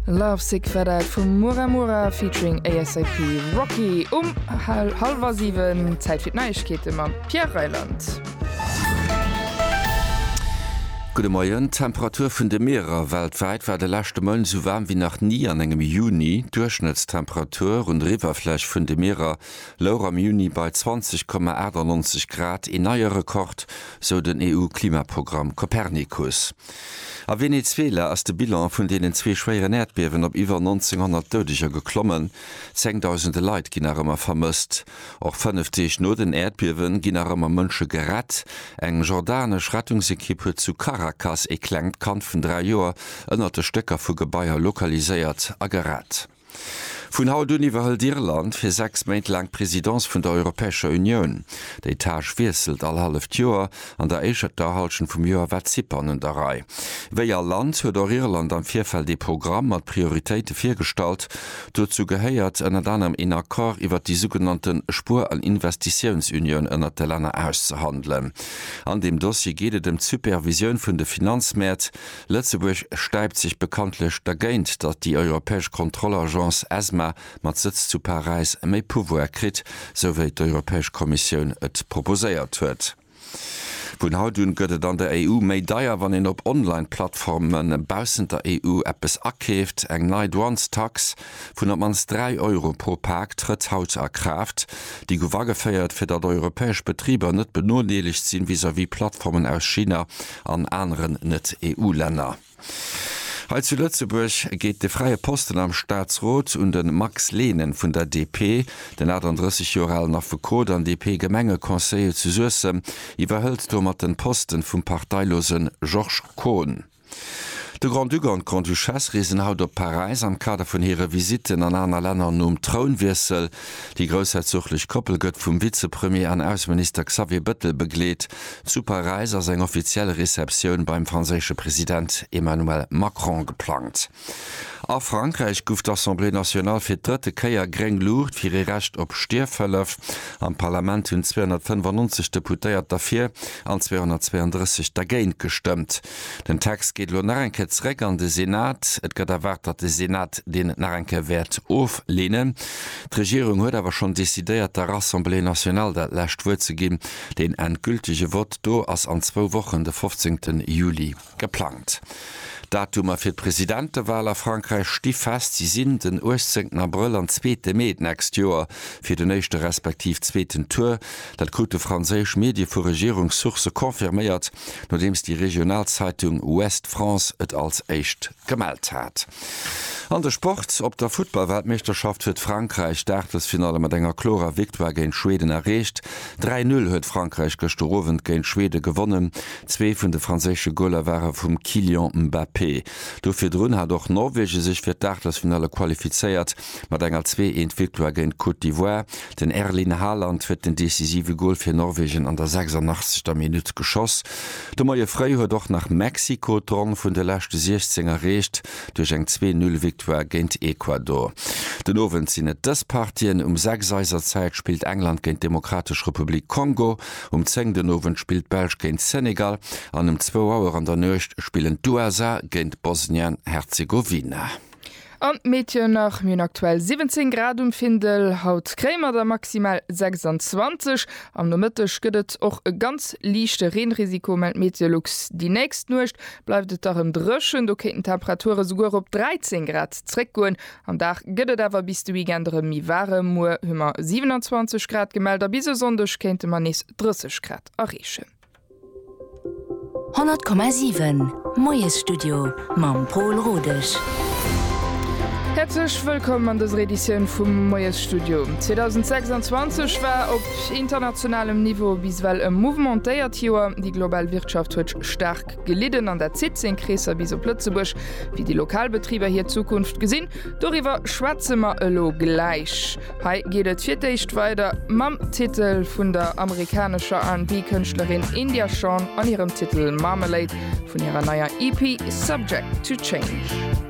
Lovesick war dat vum Mura Mura featuring ASAP Rocky um hal hallwer 7. Zäit fir d'Neiegkeete mam Pierre Reyland. Gudde Moien. D'Temperature vun de Meerer weltwäit war de leschte Mount esou waarm wéi nach ni an engem Juni. D'Duerchschnëttstemperatur un der Iwwerfläch vun de Mierer louch am Juni bei 20,98 Grad, een neie Rekord, sou den EU-Klimaprogramm Copernicus. A Venezuela ass de Bilan vun deenen zwee schwéieren Äerdbiewen op iwwer 1.900 Doudeger geklommen. Zengdausende Leit ginn nach ëmmer vermësst. Och fënnef Deeg no den Äerdbiewe ginn nach ëmmer Mënsche gerett. Eng jordanesch Rettungsekipp huet zu Caracas ee klengt Kand vun dräi Joer ënnert de Stécker vu Gebaier lokaliséiert a gerett. Vun haut un iwwerhëlt Irland fir sechs Méint laang d'Presidence vun der Europäescher Unioun. Déi Tâche wiesselt all halleft Joer, an der éischerter Hallschent vum Joer war Zypern un der Rei. Wéi all Land huet och Irland am Virfeld ee Programm mat Prioritéite virgestallt. Dozou gehéiert ënnert anerem een Accord iwwert déi sougenannte Spuer an Investitiounsunioun ënnert de Länner auszehandelen. An deem Dossier geet et ëm d'Supervisioun vun de Finanzmäert. Lëtzebuerg stäipt sech bekanntlech dergéint, datt déi europäesch Kontrollagence ESMA mat Sëtz zu Paräis méi Pouvoire kritt, sou wéi d'Europäesch Kommissioun et proposéiert huet. Vun haut un gëtt et an der EU méi deier, wann een op Online-Plattforme baussent der EU eppes akeeft. Eng nei Douanestax vun op mannst 3 Euro pro Pak trëtt haut a Kraaft. Déi gouf ageféiert, fir datt europäesch Betriber net benodeelegt sinn vis-à-vis Plattformen aus China an aneren Net-EU-Länner. Hei zu Lëtzebuerg geet de fräie Posten am Staatsrot un de Max Lehnen vun der DP. Den 38 Joer alen Affekot an DP-Gemengeconseiller zu Suessem iwwerhëlt domat de Posten vum parteilosen Georges Kohn. De Grand-Duc an d'Grande-Duchesse reesen haut op Paräis am Kader vun hire Visitten an aner Länner nom Trounwiessel. Déi groussherzoglech Koppel gëtt vum Vizepremier an Ausseminister Xavier Bëttel begleet. Zu Paräis ass eng offiziell Receptioun beim franséische President Emmanuel Macron geplangt. A Frankräich guff d'Assemblée nationale fir d'drëtte Kéier gréng Luucht fir ee Recht op Stierfhëllef. Am Parlament hunn 295 Deputéiert derfir an 232 dergéint gestëmmt. Den Text geet elo nach eng Kéier zeréck an de Senat. Et gëtt erwaart, datt de Senat deen nach eng Kéier wäert ofleenen. D'Regierung huet awer schonn decidéiert, der Assemblée nationale dat lescht Wuert ze ginn. Den endgültege Vott do ass an zwou Wochen, de 15 Juli. Geplangt Datumer fir d'Presidentewahl a Frankräich sti fest, si sinn den 18 Abrëll an zweete Mee d'nächst Joer fir den éischte respektiv zweeten Tour. Dat krute franséisch Medie vu Regierungssource confirméiert, nodeems déi regional Zeitung Ouest France et als éischt gemellt hat. An de Sport, Op der Futtballweltmeeschterschaft huet Frankräich d'Aachtelsfinalle mat enger klorer Victoire géint Schweden erreecht. 3, 0 huet Frankräich gëschter Owend géint Schwede gewonnen, Zwee vun de franséische Goler ware vum Kylian Mbappé. Do virdrun hat och Norwegen sech fir d'Aachtelsfinale qualifizéiert mat enger zwee Eent Victoire géint d'Côte d'Ivoire. Den Erlin Haaland huet den decisive Gol fir Norwegen an der 86. Minutt geschoss. De Moie fréi huet och nach Mexiko d'Ronn vun de leschte 16 erreecht duerch eng Zwee Null Victoire géint Ecuador. Den Owend sinn et dës Partien, Um 6 eiser Zäit spillt England géint d'Demokratesch Republik Kongo. Um 10 den Owend spillt d'Belsch géint Senegal an um zwou Auer an der Nuecht spillen d'USA géint Bosnien-Herzegowina. An d'Meteon nach, Mir hunn aktuell 17 Grad um Findel, haut kréie mer der maximal 26. Am Nomëtteg gëtt et och e ganz liichte Reenrisiko, mellt Meteolux. Déi nächst Nuecht bleift et da rem dréchen, do kéinten d'Temperature souguer op 13 Grad zréckgoen. Am Dag gëtt et awer bis de Weekend erëm méi waarem, muer hu mer 27 Grad gemellt a bis e Sonndeg kéinte mer nees 30 Grad erreechen. 100,7 Moiesstudio mam Pol Rodesch. Häerzlech wëllkomm an dëser Editioun vum Moiesstudio. 2026 war op internationalem Niveau bis ewell e mouvementéiert Joer. Déi global Wirtschaft huet staark. Park gelidden an dat zitt seng Kreesser bis op Lëtzebuerg, wéi déi lokal Betriber hir Zukunft gesinn. Doriwwer schwätze mer elo gläich. Hei geet et fir d'éischt weider mam Titel vun der amerikanescher R&B-Kënschtlerin India Shawn an hirem Titel Marmalade vun hirer neier EP Subject to Change.